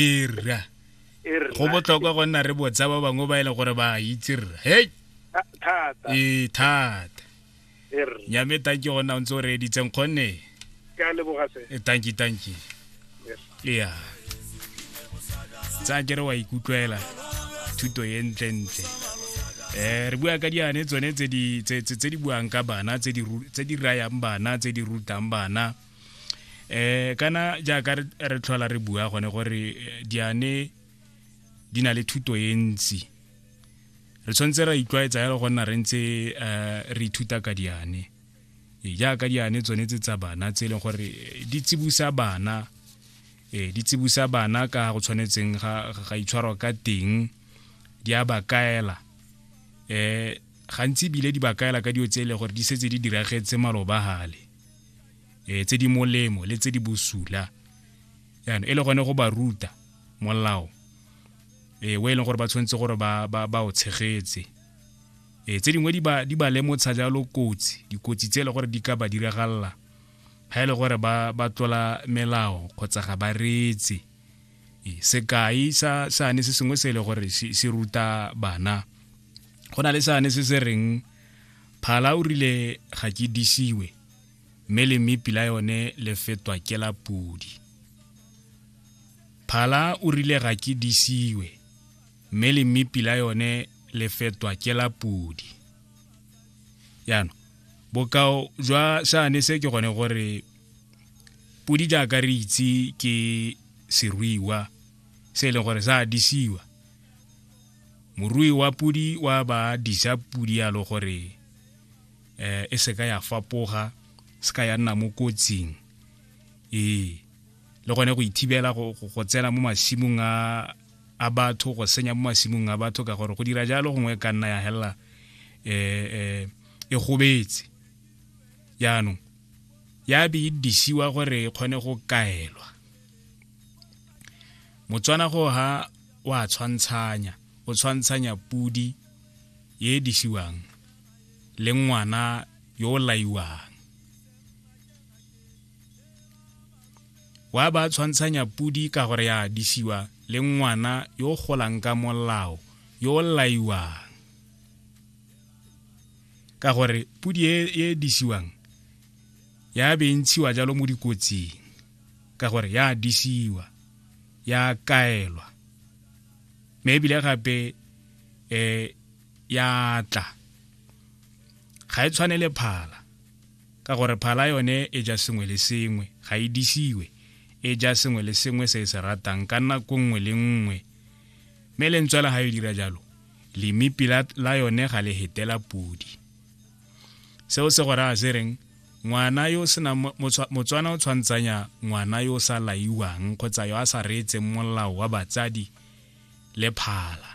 e rra go botlhokwa go nna re botsa ba bangwe ba e leng gore ba itse rra hei ee thata nyame tanki go nna o ntse o reeditseng kgonne e tanki tanki ya tsa kere wa ikutlwela thuto e ntlentle um re bua ka diane tsone tse di buang ka bana tse di rayang bana tse di rutang bana eh kana jaaka re tlhola re bua gone gore eh, diane di na le thuto e ntsi re tshwanetse ra itlwaetsa yalo go nna re ntse eh, re ithuta ka diane ee, jaaka diane tsone tse tsa bana tse e leng gore eh, di tsibusa bana ee di tsibusa bana ka go tshwanetseng ga itshwarwa ka teng di a ba kaela um gantsi ebile di ba kaela ka dio tse e leng gore di setse di diragetse malobagale eh tse di molemo le tse di bosula yana e le gone go ba ruta molao eh o e leng gore ba tshwanetse gore ba ba ba o tshegetse eh tse dingwe di ba di ba lemotsha jalo kotsi dikotsi tse e le gore di ka ba diragalela ha e le gore ba ba tlola melao kgotsa ga ba reetse eh sekai sa sane se sengwe se e le gore se se ruta bana go na le sane se se reng phala o rile ga ke disiwe mme le mmepi la yone le fetwa ke la podi phala o rile ga ke disiwe mme le mmepi la yone le fetwa ke la podi jaanong bokao jwa sane se ke gone gore podi jaaka re itse ke seruiwa se e leng gore sa disiwa morui wa pudi wa ba dija pudi yalo gore um e seka ya fapoga seka ya nna mo kotsing ee le gone go ithibela go tsena mo masimong a batho go senya mo masimong a batho ka gore go dira jalo gongwe e ka nna ya helela um e gobetse jaanong ya be e disiwa gore e kgone go kaelwa motswana go ha wa tshwantshanya o tshwantshanya pudi ye e disiwang le ngwana yo o laiwang wa ba tshwantshanya pudi ka gore ya disiwa le ngwana yo o golang ka molao yo o laiwang ka gore pudi e, e disiwang ya be e ntshiwa jalo mo dikotsing ka gore ya disiwa ya kaelwa me ebile gape um ya tla ga e tshwane le phala ka gore phala yone e ja sengwe le sengwe ga e disiwe e ja sengwe le sengwe se e se ratang ka nako nngwe le nngwe mme lentswe la ga e dira jalo lemipi la yone ga le hetela podi seo se go raya se reng ngwana yo sena motswana o tshwantsanya ngwana yo sa laiwang kgotsa yo a sa reetseng molao wa batsadi le phala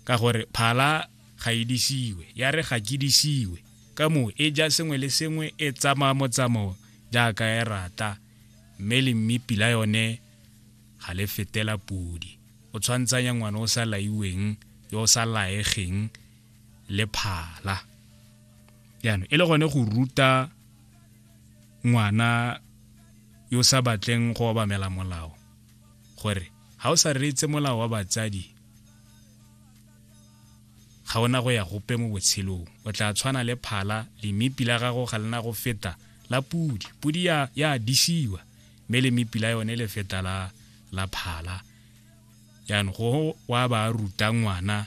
ka gore phala ga e disiwe ya re ga ke disiwe ka moo e ja sengwe le sengwe e tsamaya motsamao jaaka e rata mme le mmipi la yone ga le fetela podi o tshwantsanya ngwana o sa laiweng yo o sa laegeng le phala jaanong e le gone go ruta ngwana yo sa batleng go obamela molao gore ga o sa reetse molao wa batsadi ga ona go ya gope mo botshelong o tla tshwana le phala lemipi la gago ga lena go feta la pudi pudi ya ya disiwa mme lemipi la yone le feta la la phala jaanong go wa ba ruta ngwana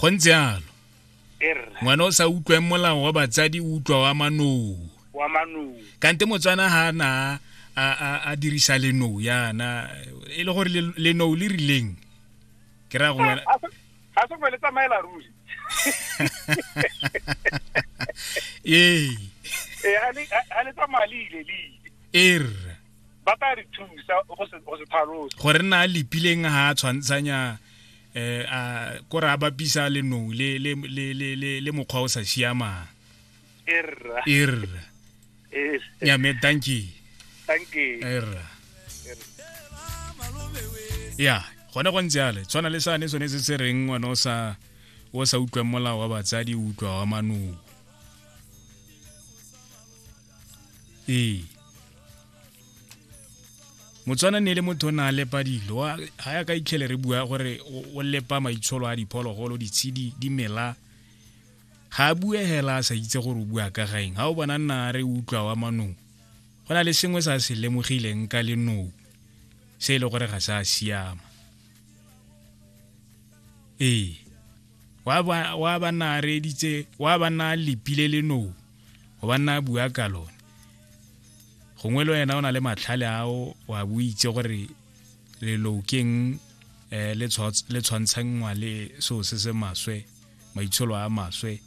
go ntse yalo ngwana o sa utlweng molao wa batsadi o utlwa wa manou kante motswana ha na a dirisa lenou yana e le gore lenou le rileng ke raya go wena ga se le tsamaela ruri ee ga eh, le tsamaya le ile le ile er ba ka re thusa go se tlhalosa gore nna a lepileng ga a tshwantshanya eh a ko re a bapisa le nou le le le le le mokgwa o sa siamang erra erra eh ya me thank you thank you erra ya gone go ntse ale tshwana le sane sone se se reng ngwana o sa o sa utlwang molao wa batsadi o utlwa wa manong ee motswana ne e le motho o ne a lepa dilo ga ya ka itlhele re bua gore o lepa maitsholo a diphologolo ditshedi dimela ga a bue hela a sa itse gore o bua ka gaeng ga o bona nna re utlwa wa manong go na le sengwe sa se lemogileng ka lenou se e le gore ga sa siama ee wa ba nna a reeditse wa ba nna a lepile lenou go ba nna a bua ka lone gongwe le wena o na le matlhale ao wa boitse gore leloukeng um le tshwantshangwa le seo se se maswe maitsholo a maswe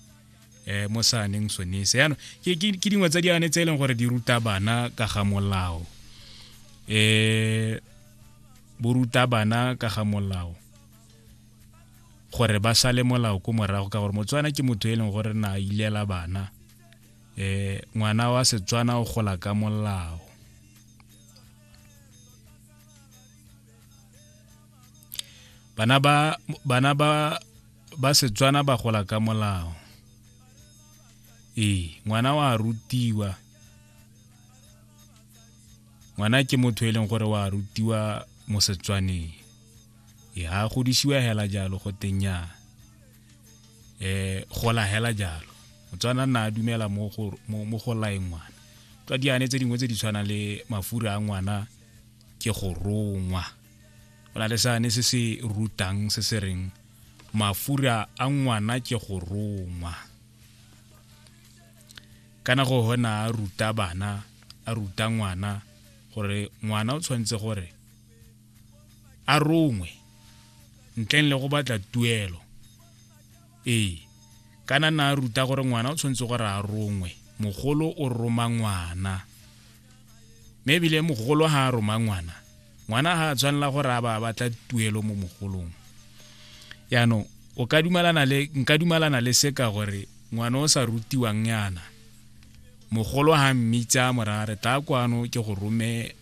um mo saaneng sone se yaanong ke dingwe tsa diane tse e leng gore di ruta bana ka ga molao um bo ruta bana ka ga molao gore ba sale molao ko morago ka gore motswana ke motho e leng gore na ilela bana eh ngwana wa setswana o gola ka molao bana ba bana ba ba setswana ba gola ka molao ee ngwana wa rutiwa ngwana ke motho e leng gore wa rutiwa mo setswaneng e ha godisiwa hela jalo go tenya eh go la hela jalo motswana nna a dumela mo go mo go laeng ngwana tswa diane tse dingwe tse di tshwana le mafura a ngwana ke go rongwa go na le sane se se rutang se se reng mafura a ngwana ke go rongwa kana go hona a ruta bana a ruta ngwana gore ngwana o tshwanetse gore a rongwe ntleng le go batla tuelo ee kana na ruta gore ngwana o tshwanetse gore a rongwe mogolo o roma ngwana mme ebile mogolo ga a roma ngwana ngwana ga a tshwanela gore a ba batla tuelo mo mogolong yaanong o ka dumalana le nka dumalana le seka gore ngwana o sa rutiwang yana mogolo ha mmitsa mora re tla kwano ke go rome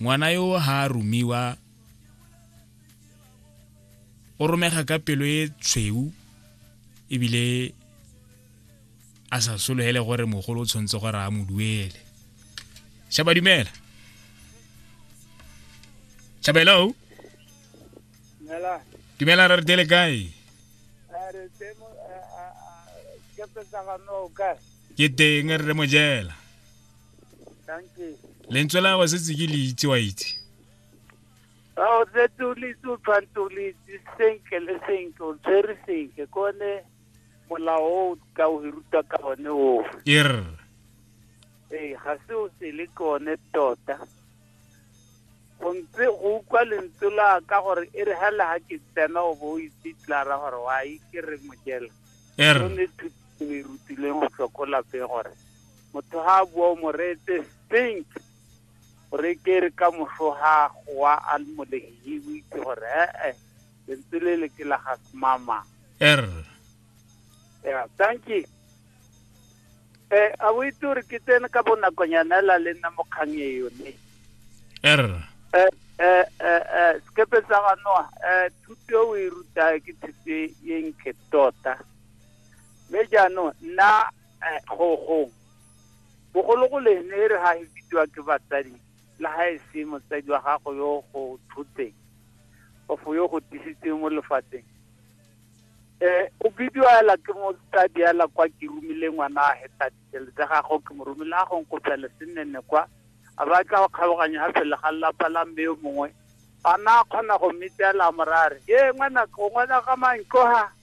Ngwana yo ha a romiwa o romega ka pelo e tshweu ebile a sa sologele gore mogolo o tshwanetse gore a mo duele shaba dumela shaba hello dumela re re dele kae ke teng re re mojela lentswe la gagwe setse ke le itse wa itse ao setse o le itse o tshwanetse o le itse senke le senke o tshwere senke ke one molao o ka o ruta ka one oo er ee ga se o sele ke one tota go ntse go utlwa lentswe la ka gore e re ga le ga ke tsena o bo o itse tlara gore wa e ke re mojela er o ne thuto e rutileng go tlhokola pe gore motho ha a bua o mo reetse think gore ke re ka moso ga goa a le molegi o itse gore ee lentswe le le ke la ga semama er yeah thank you eh a o itse gore ke tsene ka bonakonyana la le nna mokgang e yone er eh eh eh, eh sekepe sa ga noa eh thuto o e ruta ke thuto e nke tota mme jaanong nna eh, go go bogologoleng e re ga e bidiwa ke batsadi le ga e se motsadi wa gago yo go thotseng ofo yo go tisitseng mo lefatsheng um o bidiwa ela ke motsadi ela kwa ke romile ngwana a heta ditele tsa gago ke mo romile a gong go phele se nnenne kwa a ba tla go kgaoganya ga phele ga lelapa la mme yo mongwe a na kgona go mmitela morare ye ngwana ngwana ga mantlo ga